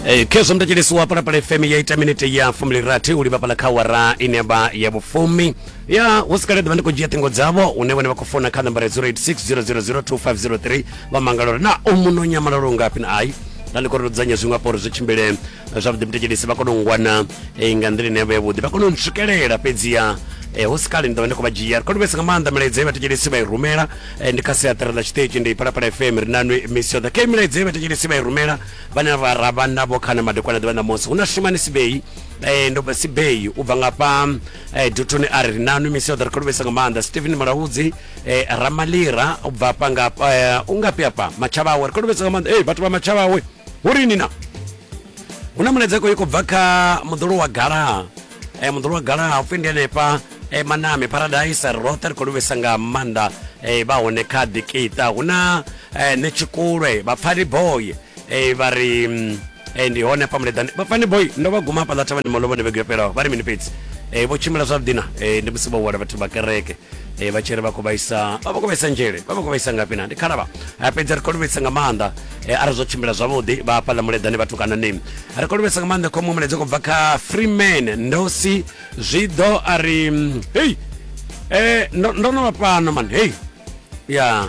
Eh, khezwo mtatsheleso wa palapala fm ya ita minete ya fumi lirathi u livhapala kha wara ine ya vha ya vhufumi ya hu si kale ḓuvha ndi khou dzhia ṱhingo dzavho une vhone vha khou fona kha nambara 0860002503 vha mangala uri na u muno nyamalalo ngafhi na ai na ndi khou ri dzudzanya zwiṅwe afho uri zwi tshimbile zwavhuḓi mutekedisi vha kone u wana eh, nga nḓila ine vhe vhuḓi vha kone u ntswikelela fhedziha eh, hu si kale ndi ḓovha ndi khou vha dzhia ri khou livhesa nga maanḓa milaedza ye vhatekedisi vha i rumela eh, ndi kha siaṱari ḽa tshiṱitshi ndi phalaphala fm ri na nwi misi yoṱhe khe milaedza ye vhatekedisi vha i rumela vhane vha ra vha navho khana madekwana ḓuvha ṋamusi hu na shumani sibei eh, ndo sibei u bva ngafha eh, dutoni a ri ri nanu misi yoṱhe ri khou livhesa nga maanḓa stephen malaudzi eh, ramalira u bva hafha ngafha eh, u ngafhi hafha matshavhawe ri khou livhesa nga maanḓa eh, vhathu vha matshavhawe hu ri nina hu na muledzeko i khou bva kha muḓolo wa galaha eh, muḓolo wa galaha u pfi ndi henefha eh, maname paradise roṱhe ri khou livhisa nga maanḓa eh, vha hone kha ḓikita hu na eh, ne tshikulwe vhapfani boy eh, vha ri mm, eh, ndi hone pa muleḓani vhapfani boy ndo vha guma hafhaḽa thavhani malovhone vhege yo fhelaho vha ri mini fhedzi eh, vho tshimbila zwavhuḓi na eh, ndi musi vho wela vhathu vha kereke e, vha tshi ri vha khou vhaisa vha vha khou vhaisa nzhele vha vha khou vhaisa ngafhi na ndi khalavha a fhedza ri khou livhisa nga maanḓa e, arali zwo tshimbila zwavhuḓi vha hafhaḽa muleḓane vhathu kana ni ri khou livhisa nga maanḓa khomo muledza khou bva kha freeman ndosi zwi ḓo a ri mm, hei e, ndo, ndo no vha fhano man hei ya